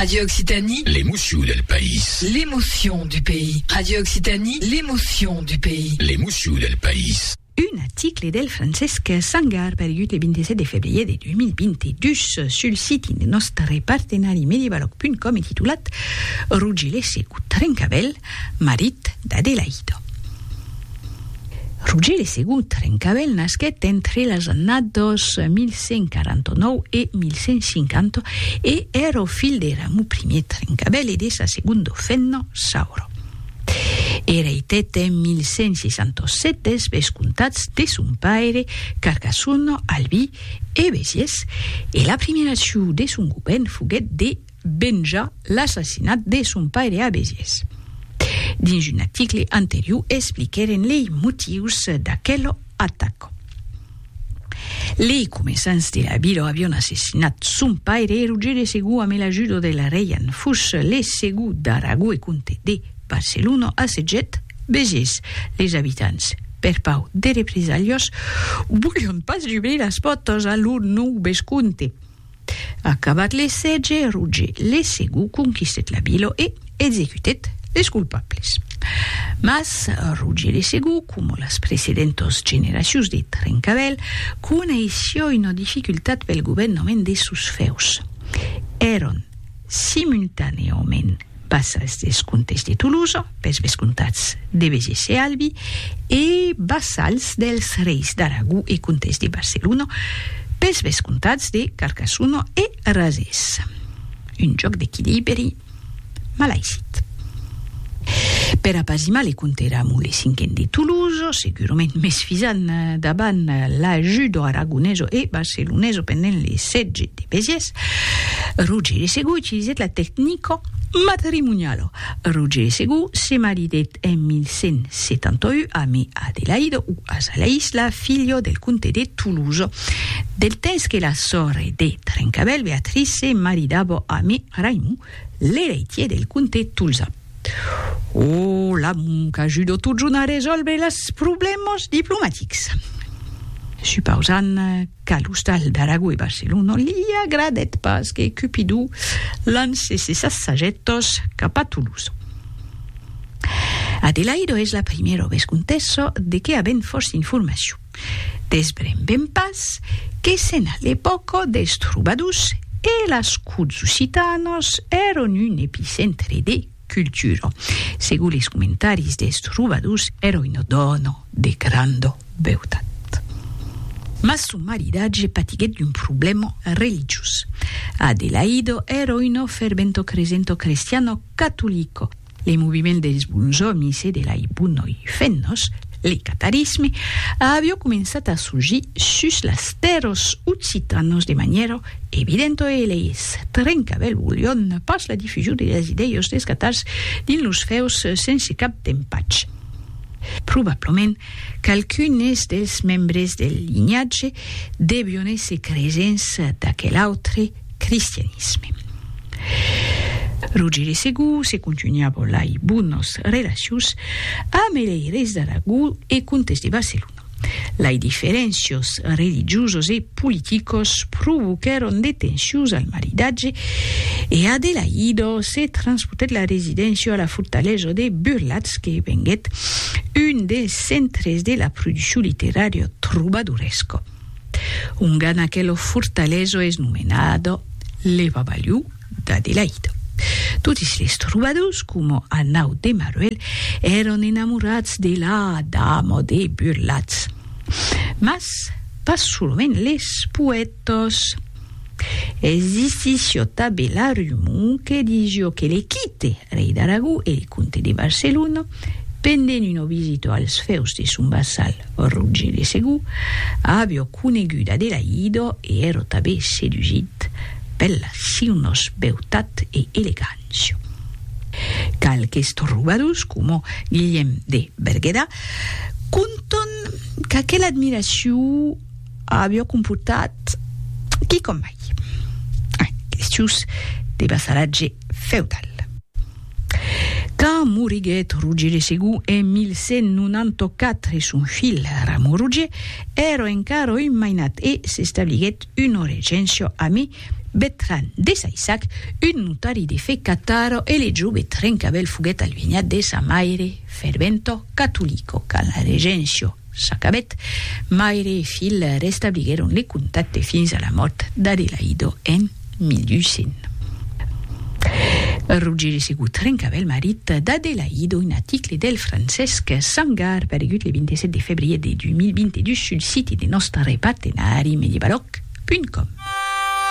Radio Occitanie. L'emocion del país. L'emocion du pays. Radio Occitanie. L'emocion du pays. L'emocion del país. Un aticle del Francesc Sangar pergut le 27 de febrier de 2022 sul siti de nòstre partenari medievaloc.com e titulat Rugilese o Trencavèl, marit d'Adelaïdo. Roger de Segur Trencavèl nasquèt entre las annadas 1149 e 1150 e èra o filh de Ramou Ier Trencavèl e de sa segonda femna Saura. Ereitèt en 1167 des vescomtats de son paire Carcassona, Albi e Besiers e la primièra ciu de son govèrn foguèt de venjar l'assassinat de son paire a Besiès. Dins un aticle anterior expliquèren lei motius d'aquela ataca. Lei comesans de la vila avion assassinat son paire e Roger de Segou amé l'ajuda de la reia en fus le Segou d'Aragó e comte de Barcelona assetgèt Besiès. Leis abitants, per pau de represalhas, volián pas jubrir las pòrtas a lor nòu vescomte. Acabat le sètge, Roger le Segond conquistèt la vila e executèt les colpables. Mas, Roger le Segond, coma las precedentas generacions de Trencavèl, coneissiá una dificultat pel governament de sos fèus. Èran, simultanèament, Pas als descomptes de Tolosa, pels vescomtats de Vegés e Albi, e pas als dels reis d'Aragó e comtes de Barcelona, pels vescomtats de Carcassona e Razés. Un jòc d'equilibri malaisit. Per apazimar le comte Ramon le Cinquen de Tolosa, segurament mès fisant davant l'ajuda aragonesa e barcelonesa pendent le sètge de Vegés, Rogere Segú utilizèt la tecnica matrimoniala. Rogere Segú se maridèt en 1171 amé Adelaide o Azalaïs, la filha del comte de Toulouse. Del temps que la sòrre de Trencavèl, Beatrice, se maridava amé Raimond, l'ereitier del comte tolzan. O l'amor qu'ajuda totjorn a resòlvre las problèmas diplomatics. Supausant Qu'a l'ostal d'Aragó e Barcelona li agradèt pas que Cupidó lance ses assajèthos cap a Toulouse. Adelaido es la primièra vescontessa de qué avèm fòrça informacion. Desbrembem pas que sèn a l'epòca dels trobadors e las corts occitanas èran un epicentre de. cultura. Segur les comentaris des trobadors èra una dòna de granda beutat. Mas son maridatge patiguèt d'un problèma religiós. Adelaida èra una ferventa cresenta crestiana catolica. Li moviments dels bons òmis e de lei bonoi femnas Le catarisme a avió començat a surgir sus las tèrras occitanas de manièra evidenta e leis trencavèl volion pas la difusion de las idèias des catars dins los fèus sense cap d'empatge. Probablament qualqu'unes dels membres del linhatge devion èsser cresents d'aquel autre, cristianisme. Rogere Segú se contunha bolai bonos relacions amb lei reis d'Aragó e comtes de Barcelona. Lai diferéncios religiosos e politicos provoquèron de tensions al maridatge e Adelaido se transpotèt la residéncia a la fortalesa de Burlatz que venguèt un des centres de la produccion literària trobadoresca. Un gan aquelo fortaleso es nomenado le babaliu d'Adelaida. Totis les trobadors, coma a nau de Maruel, èron enamorats de la dama de Burlatz. Mas pas solament les poètas. Existissió tabe la rumor que dijo que le quite rei d'Aragó e le comte de Barcelona, pendent una visita als fèus de son vassal Roger de Segur, avió conegut Adelaïda e èra tabe sedusite per la siunos beutat e elegància. Qualques trobadors, coma Guilhem de Berguedà, contan qu'aquela admiracion, Avió comportat quicòm mai en questius de vassalatge feudal. Quand moriguèt Roger de Segú en 1194 son filh Ramon Roger èra encara un mainat e s'establiguèt una regéncia amé Betran de Saissac, un notari de fe catara e le jove Trencabèl foguèt alvenhat de sa maire ferventa catolica. Quand la regéncia. S'acabèt, maire e filh restabliguèron le contacte fins a la mòrt d'Adelaido en 1800. Rogèri Segur trencava el marit d'Adelaido, un aticle del Francesc Sangar paregut le 27 de febrier de 2022 sul siti de nòstre partenari mediabalòc.com.